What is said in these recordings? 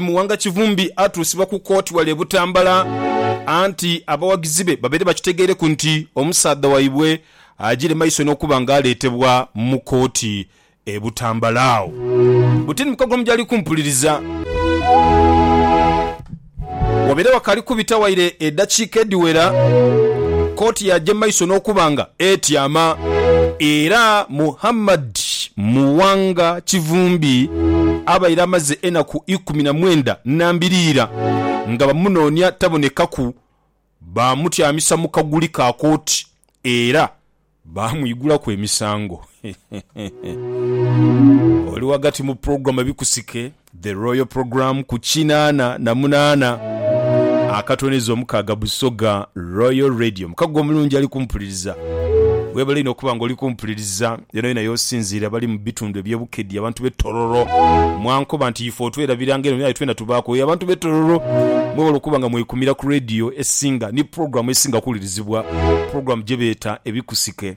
Muwanga Kivumbi atuusibwa ku kooti wale e Butambala anti abawagizi be babaire bakitegeereku nti omusaadha waibwe ajiire maiso n'okuba nga aleetebwa mu kooti e Butambala agho buti ni mu kagulumu gyali kumpuliriza. Wabaire wakaali kubita waire edakiika edhiwera kooti yaaje maiso n'okuba nga etyama era Muhammad. Muwanga Kivumbi abaire amaze enaku ikumi na mwenda nambiriira nga bamunoonia tabonekaku, baamutyamisa mu kaguli ka kooti era baamwigulaku emisango. Oli ghagati mu program ebikusike. The Royal Programme ku kinaana na munaana akatonyeza omukaaga Busoga Royal Radio. Muka gwe omulungi ali kumpuliriza, webale inho okuba nga oli kumpuliriza yonayona yosinziire, abali mu bitundu ebye Bukedi, abantu be Tororo, mwankoba nti ife otwerabira nga eno aye twena tubaaku oyo. Abantu be Tororo mwebale okuba nga mwekumira ku Radio esinga ni Programme esinga okuwulirizibwa, Programme gyebeeta Ebikusike.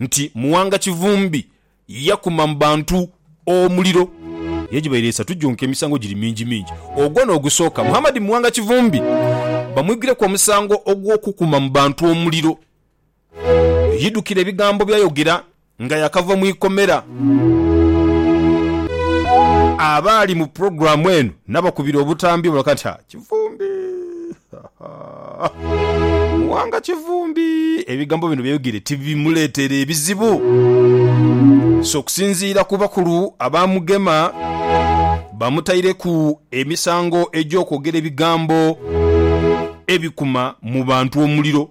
nti Muwanga Kivumbi yakuma mu bantu omuliro egibaire esatu gyonka emisango giri mingi mingi ogwo n'ogusooka Muhammad Muwanga Kivumbi bamwiguireku omusango ogw'okukuma mu bantu omuliro. Yidukira ebigambo byayogera nga yakava mu ikomera. Abaali mu pulogulaamu eno nabakubira obutambi balaga nti, Ha, Kivumbi! Muwanga Kivumbi ebigambo bino byeyogeire tibimuleetere ebizibu so okusinziira ku bakulu abaamugema bamutaireku emisango egy'okwogera ebigambo ebikuma mu bantu omuliro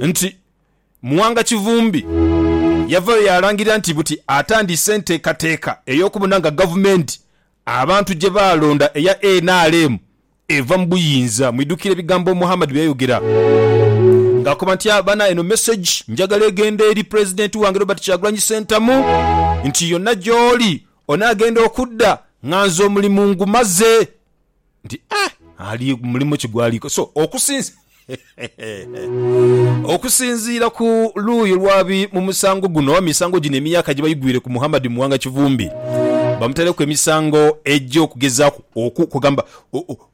nti Muwanga Kivumbi yavayo yaalangirira nti buti atandise enteekateeka ey'okubona nga gavumenti abantu gye baalonda eya nrm eva mu buyinza. Mwidhukire ebigambo Muhammad bye yayogera ng'akoba nti, Bana eno mesegi njagala egende eri Pulezidenti wange Robert Kyagulanyi Ssentamu nti yonna gy'oli onaagenda okudda nga nze omulimu ngumaze. nti, Eh, ali mulimu ki gw'ali kukola? So, okusinzi, okusinziira ku luuyi lw'abali mu musango guno, oba misango gino emyaka gye baigwire ku Muhammad Muwanga Kivumbi, bamutaireku emisango egy'okugezaaku oku, kwegamba,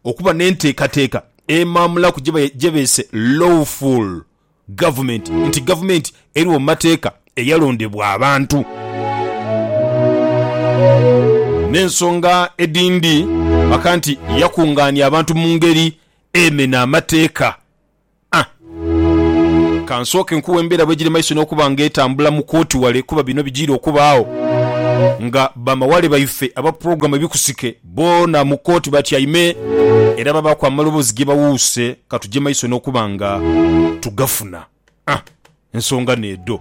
okuba n'enteekateeka emaamulaku gye beese lawful Gavumenti nti Gavumenti erigho mu mateeka eyalondebwa abantu. N'ensonga edhindi aka nti yakungaania abantu mu ngeri emena amateeka. A. Ka nsooke nkuwe embeera bwegiri mu maiso n'okuba nga etambula mu kooti wale kuba bino bijiire okubaagho nga bamawale baife aba pulogulaamu Ebikusike Boona mu kooti batyaime era babaaku amaloboozi ge bawuuse ka tuje maiso n'okuba nga tugafuna. Ah! Ensonga n'edho.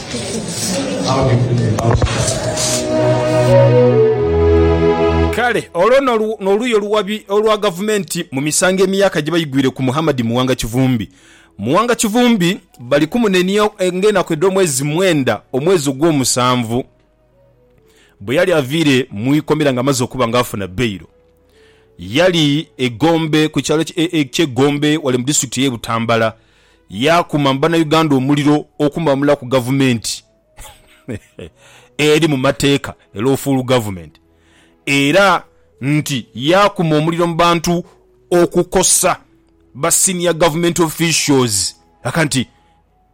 Kale olwo n'oluuyi oluwabi olwa Gavumenti mu misango emyaka gye baigwire ku Muhammad Muwanga Kivumbi. Muwanga Kivumbi bali kumunenia ng'enaku edh'omwezi mwenda omwezi ogw'omusanvu. bwe yali aviire mu ikomera nga amaze okuba nga afuna bailo, yali e Gombe ku kyalo ky'e Gombe wale mu disitulikiti ey'e Butambala yaakuma mu Bannauganda omuliro okumamulaku gavumenti eri mu mateeka, e Lawful Government, era nti yaakuma omuliro mu bantu okukosa ba senior government officials. Aka nti.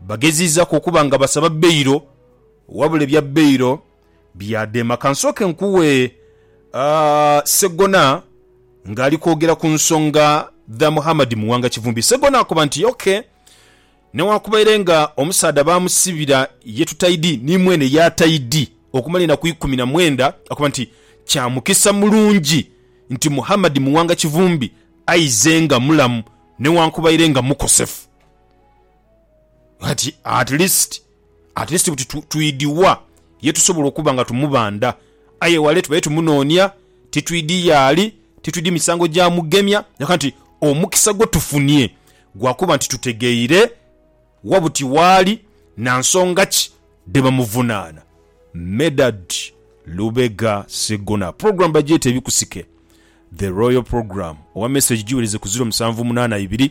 Bageziizaku okuba nga basaba bailo wabula ebya bailo byadema. Kansooke nkuwe Ssegona ng'ali kwogera ku nsonga dha Muhammad Muwanga Kivumbi. Ssegona akoba nti, OK, newankubaiere nga omusaadha baamusibira ye tutaidi ni mwene yaataidi okumala enaku ikumi na mwenda, akoba nti kya mukisa mulungi nti Muhammad Muwanga Kivumbi aize nga mulamu newankubaiere nga mukosefu. Ati at least, at least buti twidhi wa ye tusobola okuba nga tumubandha. Aye wale tubaire tumunoonia, titwidhi yaali, titwidhi misango gyamugemya, yonka nti omukisa gwe tufunie gwa kuba nti tutegeire wa buti waali na nsonga ki dhe bamuvunaana. Medard Lubega Ssegona Program bagyete Ebikusike The Royal Program owa Message giwereze ku ziro musanvu munaana ibiri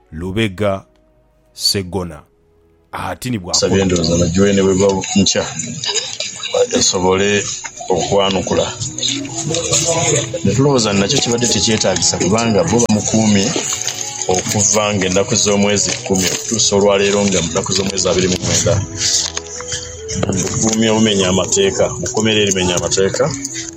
Lubega Ssegona ati ni bw'akola Nsabye endhooza na Juene bweba nkya esobole okwanukula ne tulowooza nti nakyo kibadde tekyetaagisa kubanga bbo bamukuumye okuva ng'ennaku z'omwezi kumi okutuusa olwaleero nga mu nnaku z'omwezi abiri mu mwenda mu bukuumi obumenya amateeka mu kkomera erimenya amateeka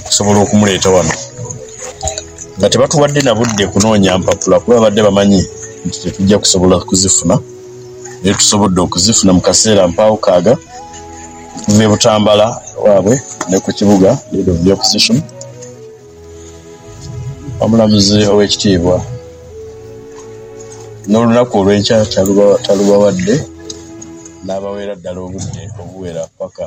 okusobola okumuleeta ghano. Nga tibatuwadde na budde kunoonya mpapula kuba babadde bamanyi nti titwidha kusobola kuzifuna. Aye tusobodde okuzifuna mu kaseera mpaagho kaaga okuva e Butambala ewaabwe ni ku kibuga Board of the Opposition. Omulamuzi ow'ekitiibwa n'olunaku olwenkya talubawadde, n'abaweera ddala obudde obuwera paka.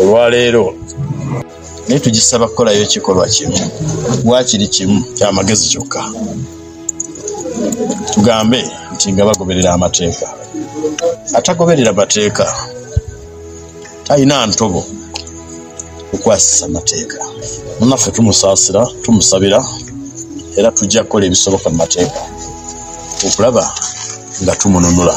Olwaleero ni tugisaba kukolayo ekikolwa kino bwa kiri kimu kya magezi kyokka, tugambe nti nga bagoberera amateeka. Atagoberera mateeka talina ntobo kukwasisa mateeka. Munaffe tumusaasira, tumusabira era tujja kukola ebisoboka mu mateeka okulaba nga tumununula.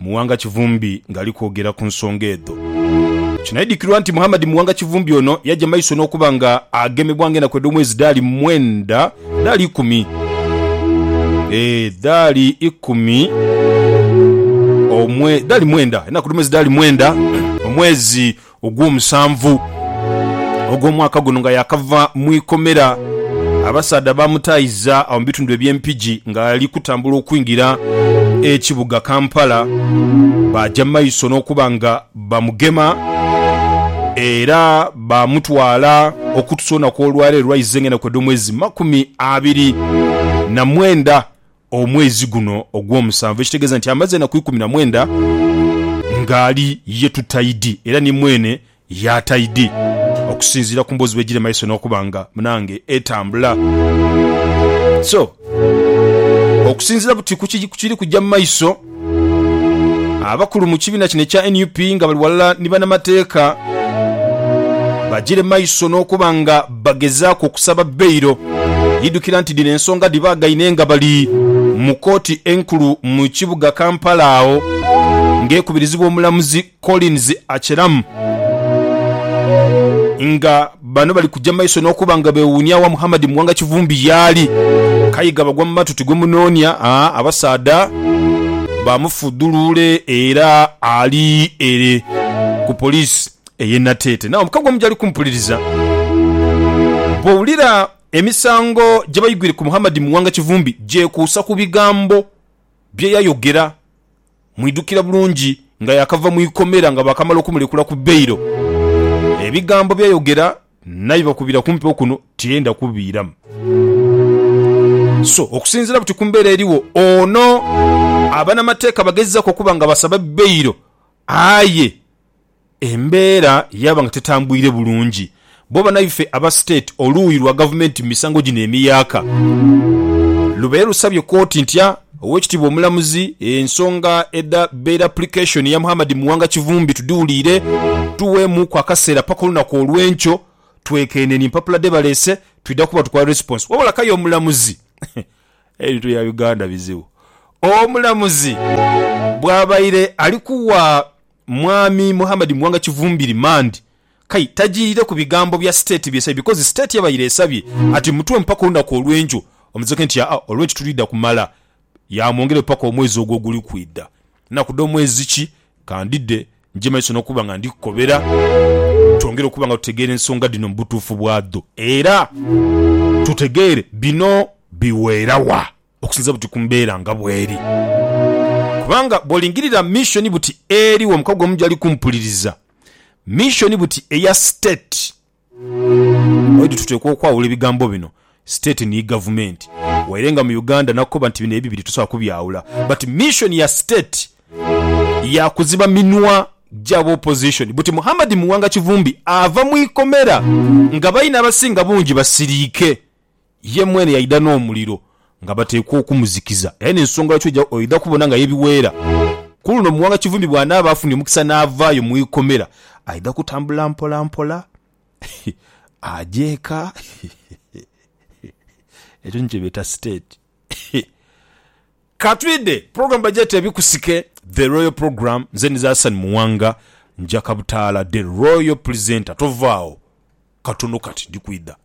Muwanga Kivumbi ng'ali kwogera ku nsonga edho. Kinaidhikirwa nti Muhammad Muwanga Kivumbi ono yaja maiso n'okuba nga agemebwa ng'enaku edh'omwezi dhaali mwenda dhaali ikumi ee dhaali ikumi omwe dhaali mwenda enaku dh'omwezi dhaali mwenda omwezi ogw'omusanvu ogw'omwaka guno nga yaakava mu ikomera, abasaadha baamutaayiza agho mu bitundu eby'e Mpigi ng'ali kutambula okwingira ekibuga Kampala. Baaja mu maiso n'okuba nga bamugema era baamutwala okutusa olunaku olwaleero lwa izenga enaku edh'omwezi makumi abiri na mwenda omwezi guno ogw'omusanvu, ekitegeeza nti amaze enaku ikumi na mwenda ng'ali ye tutaidi, era ni mwene y'ataidi, okusinziira ku mboozi bw'egira emaiso n'okuba nga, munange, etambula. So, okusinziira buti ku kiri kugya mu maiso. Abakulu mu kibiina kino ekya nup nga bali ghalala ni banamateeka bagyire maiso n'okuba nga bagezaaku okusaba bailo. Idhukira nti dhino ensonga dhibaagaine nga bali mu kooti enkulu mu kibuga Kampala agho ng'ekubirizibwa omulamuzi Collins Acheram nga bano bali kuja maiso n'okuba nga bewuunia wa Muhammad Muwanga Kivumbi yaali. Kayiga bagwa mu matu ti gwe munoonia, aa abasaadha bamufudhuluule era ali ere ku poliisi ey'e Nateete. Naawe mukagwa mu gyali kumpuliriza bw'owulira emisango gye baigwire ku Muhammad Muwanga Kivumbi gyekuusa ku bigambo bye yayogera Mwidhukira bulungi nga yaakava mu ikomera nga baakamala okumuleekula ku bailo, ebigambo bye yayogera naibakubira ku mpewo kuno tiyenda kubiiramu. So okusinziira buti ku mbeera eriwo, ono abanamateeka bagezaku okuba nga basaba bailo aye Embeera yaaba nga tetambwire bulungi bbo banaife aba State oluuyi lwa gavumenti mu misango gino emiyaaka. Lubaire lusabye kooti ntya Owekitiibwa Omulamuzi ensonga edha bail application ya Muhammad Muwanga Kivumbi tudhiwuliire tuweemuuku akaseera paka olunaku olwenkyo twekenenye empapula dhebalese twidha kuba tukola response wabula k'aye omulamuzi Ebintu bya Uganda bizibu. Omulamuzi bwabaire ali kuwa. Mwami Muhammad Muwanga Kivumbiri, Mand. Kai tajiirire ku bigambo bya State byesabye because State yabaire esabye ati mutuwe mpaka olunaku olw'enkyo omuzizeku nti aa olw'enkyo tulidha kumala yaamwongerayo paka omwezi ogwo oguli kwidha. Nnaku dha omwezi ki? Ka ndidhe nje maiso n'okuba nga ndi kukobera twongere okuba nga tutegeera ensonga dhino mu butuufu bwadho era tutegeere bino biweera wa. okusinzira buti ku mbeera nga bw'eri. Kubanga bw'olingirira missioni buti eri wo mukago omu gyali kumpuliriza, missioni buti eya state, oidhi tuteekwa okwawula ebigambo bino, state ni gavumenti. Waire nga mu Uganda nakoba nti bino ebibiri tosobola kubyawula but missioni ya state ya kuziba minwa gya b'opposition buti Muhammad Muwanga Kivumbi ava mu ikomera nga baine abasinga bungi basiriike Ye mwene yaidha n'omuliro nga bateekwa okumuzikiza, era n'ensonga lwaki oja oidha kubona nga yebiweera. Ku luno Muwanga Kivumbi bw'anaaba afunye omukisa n'avaayo mu ikomera, aidha kutambula mpola mpola aje eka. Ekyo ni kye beeta state. Ka twidhe pulogulaamu bagyeta Ebikusike, The Royal Programme. Nze Niza Hassan Muwanga, nja Kabutaala, The Royal Presenter. Tovaagho, katono kati ndi kwidha.